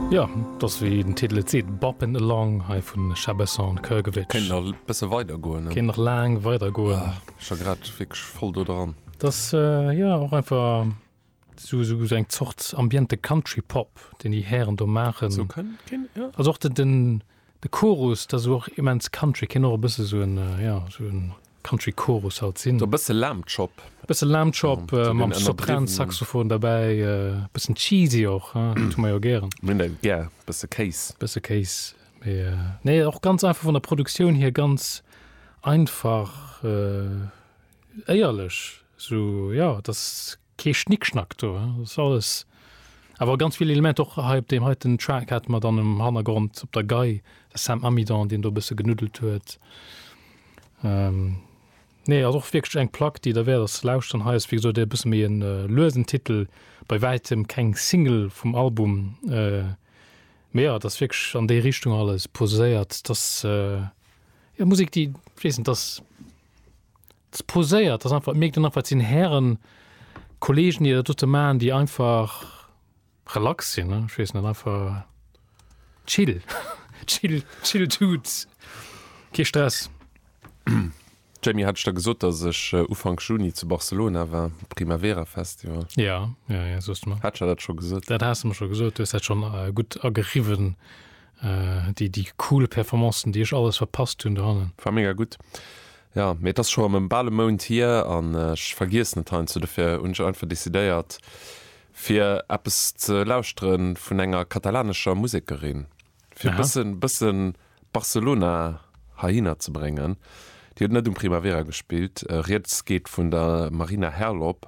Jo, et ass wéi den Titel et seet, Boppin' Along hei vu Shabessa an Krgovic. Kéint nach e bësse weider goen, ne? Kéint nach laang weider goen. Ah, ech war grad wierklech voll do dran. Dat ass, jo, och einfach esou, esou eng Zort ambiente Country-Pop, deen déi Hären do maachen. Esou kënnt, kéint, jo. Also och den, den. De Chorus, dat ass och immens country, kéint och e bësse sou en, jo, sou en country Chorus halt sinn. Sou e bësse Lamb Chop. Bësse Lamb Chop mam Sopran Saxophon derbäi, e bëssen cheesy och, haa, dat hu mer jo gären. Mir hunn dat gär, bësse Kéis. Bësse Kéis, mee nee, och ganz einfach vun der Produktioun hier, ganz einfach, éierlech, sou, jo, et ass Kee Schnickschnack do, et ass alles, awer ganz vill Elementer, och hei op deem heiten Track hate mer dann um Hannergrond op der Gei de Sam Amidon, deen do e bësse genuddelt huet. Nee, ass och wierklech eng Plack, déi derwäert ass ze lauschteren. Hei ass wéi gesot e bësse méi e luesen Titel, bei wäitem keng Single vum Album, mee jo, et ass wierklech an déi Richtung alles poséiert. Et ass jo Musek, déi, ech weess net, et ass. Et poséiert, dass einfach, et mierkt een einfach, et sinn Hären, Kollegen, déi dat dote maachen, déi einfach relax sinn, ech weess net, einfach chill, chill, chill Dudes, kee Stress. Jamie, hat ech der gesot, dass ech Ufank Juni zu Barcelona war, Primavera Festival? Jo, jo, jo, soos de mer. Hat ech der dat scho gesot? Dat has de mer scho gesot, du hues dat schonn gutt ageriwwen, Déi déi cool Performancen déi ech alles verpasst hunn dohannen. War mega gutt, jo, mee et ass scho erëm bal e Mount hier an ech vergiessen et heiansdo. Dofir hunn ech einfach decidéiert fir eppes ze lauschtere vun enger katalanescher Musekerin, fir e bësse Barcelona heihinner ze bréngen. Déi huet net um Primavera gespillt, Rieds geet vun der Marina Herlop.